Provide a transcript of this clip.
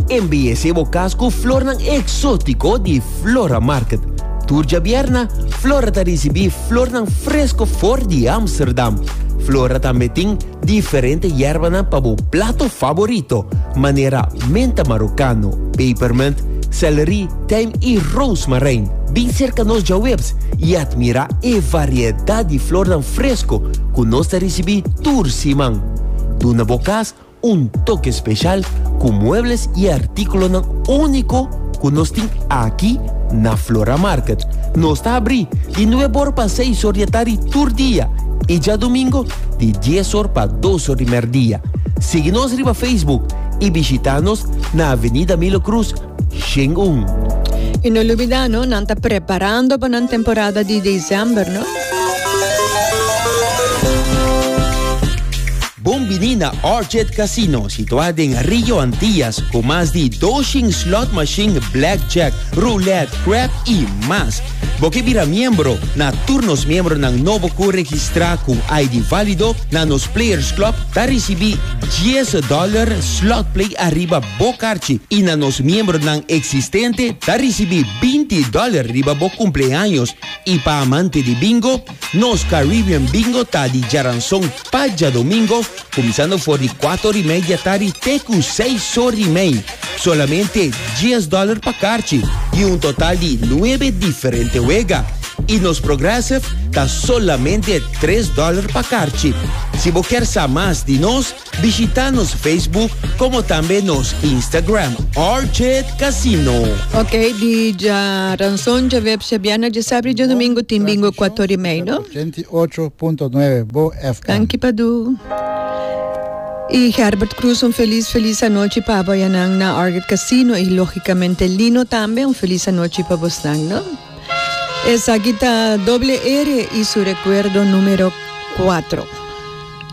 Embellece bo cas cu flornan exótico di Flora Market. Tur djabierna, Flora ta ricibi flornan fresco for di Amsterdam. Flora tambe tin diferente yerbanan pa bo plato favorito, manera menta marocano, pepermint, celery, tijm y rozemarijn. Bin cerca nos djaweps y admira e variedad di flornan fresco cu nos ta ricibi tur siman. Duna bo cas Un toke speshal ku muebles i artíkulonan úniko ku nos tin aki na Flora Market. Nos ta abrí di nuebe or pa seis or di e tardi tur dia i djadumingo di dies or pa dos or di merdia. Sigui nos riba Facebook i bishitá nos na Avenida Milo Cruz, Shin un. I no lubidá no, nan ta preparando pa nan temporada di desèmber no. Bon bini na Arjet Casino situá den Rio Antillas ku mas di doshen slot mashin, blackjack, roulette, crap i mas. Bo ke bira miembro na tur nos miembronan nobo ku registrá ku ID válido na nos Players Club ta risibí dies dòler slot play ariba bo karchi i na nos miembronan eksistente ta risibí binti dòler riba bo kumpleaños. I pa amante di bingo, nos Caribbean Bingo ta di Jaranson. Pa djadomingo, kuminsando for di kuato ori mei di atari te ku seis ori mei, solamente dies dòler pa karchi i un total di nuebe diferente wega. I nos Progressive ta solamente tres dòler pa karchi. Si bo kier sa mas di nos, bishita nos Facebook komo tambe nos Instagram Orchid Casino. Ok, di dja ranson dja websha bièrnè dja sabri djadomingo tin bingo kuato ori mei, no? 108.9 Bo FM. Danki Padu y Gerbert Cruz un feliz feliz anochi pa abo ya nan na Orchid Casino y logicamente Lino tambe un feliz anochi pa bos nan no esaki ta Doble Ere y su recuerdo numero cuatro.